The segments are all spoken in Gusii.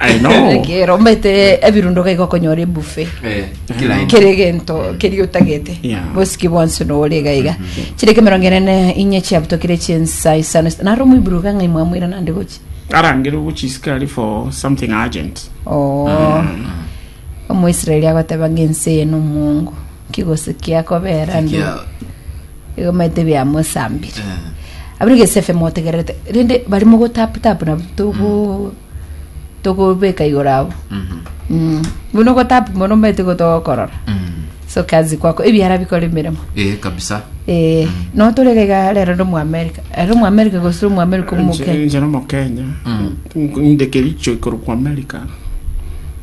I know. Ekero omete ebirundo gaiga okonyora ebufe Eh, kila aina. kere gento keria otagete Yeah. bosiki bwonsi nore iga iga chireke emerongo enene inye chiabutokire chinsa isano naro omwiburu gang'ai mwamwira nande gochi Arangire ogochisikari for something urgent. oo Omoisraeli agoteba ng'a ense eye nomwongo, nki gose kiakobeera ande Kia- egomete biamosambire Eh, abere gese efe motegererete rende bari mogotaputapu nabo togo togobeka igoro abo mhm, Mm. buna ogotapu mono omanyete gotogokorora mm. so kazi kwako ebiara bikora emeremo Eh, kabisa Eh, no torega iga rero ndo mu america ero mu america gose ro mu america omoke njera omokenya ndekericho ikorokwa america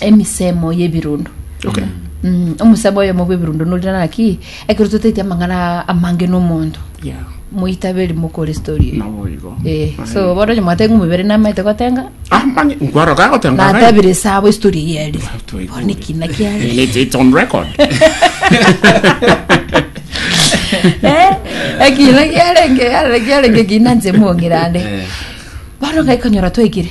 emisemo y'ebirundo Okay. Mm, omusemo oyomo bw'ebirundo norire naki ekero totaeti amang'ana amange n'omonto Yeah. moitaberi mokore story eyo. Nabo igo. Eh, Aye. so bono onye mwatenge omobere namaete gotenga Ah, mani, nkwaro ka gotenga abe. natabire sabo story eye eri Twaigure. bono ekina kiari And it's, it's on record. Eh, ekina kiarenge arenge kiarenge kina nse mong'irande bono gaikonyora twaigire